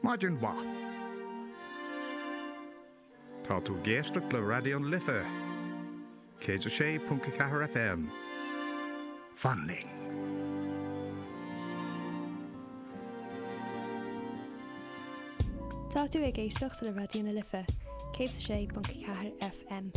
Maidin mhaith. Tá tú ag éisteacht le Raidió na Life, 106.4 FM. Fan linn. Tá tú ag éisteacht le Raidió na Life, 106.4 FM. FM.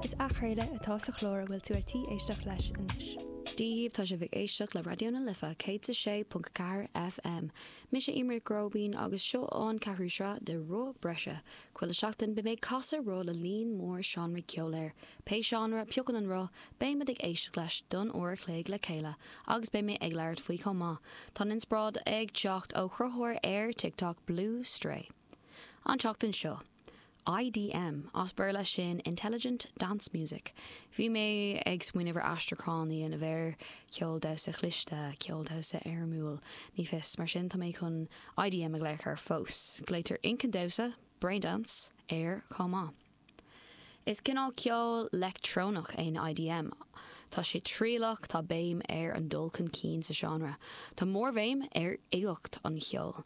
Is athchraoladh atá sa chlár a bhfuil tú ar tí éisteacht leis anois. Dia dhaoibh tá sibh ag éisteacht le Raidió na Life 106.4 FM. Mise Emer Gróibín agus seo an ceathrú sraith de Roth Breise. Chuile sheachtain beidh mé ag casadh roth le líon mór seánraí ceoil air. Pé seánra a phiocann an roth, beimid ag éisteacht leis don uair an chloig le chéile agus beidh mé ag labhairt faoi chomh maith. Tá an inspioráid ag teacht ó chruthaitheoir ar TikTok Blue Stray. An tseachtain seo, IDM, as Béarla, sin Intelligent Dance Music. Bhí mé ag smaoineamh ar aistriúchán a dhéanamh air, ceol damhsa chliste, ceol damhsa éirimiúil, ní fios. Mar sin, tá mé chun IDM a ghlaoch air fós. Glaoitear inchinn damhsa, Brain Dance, air chomh maith. Is cineál ceol leictreonach é an IDM. Tá sé trialach, tá béim ar an dul chun cinn sa seánra, tá mórbhéim ar uigeacht an cheoil.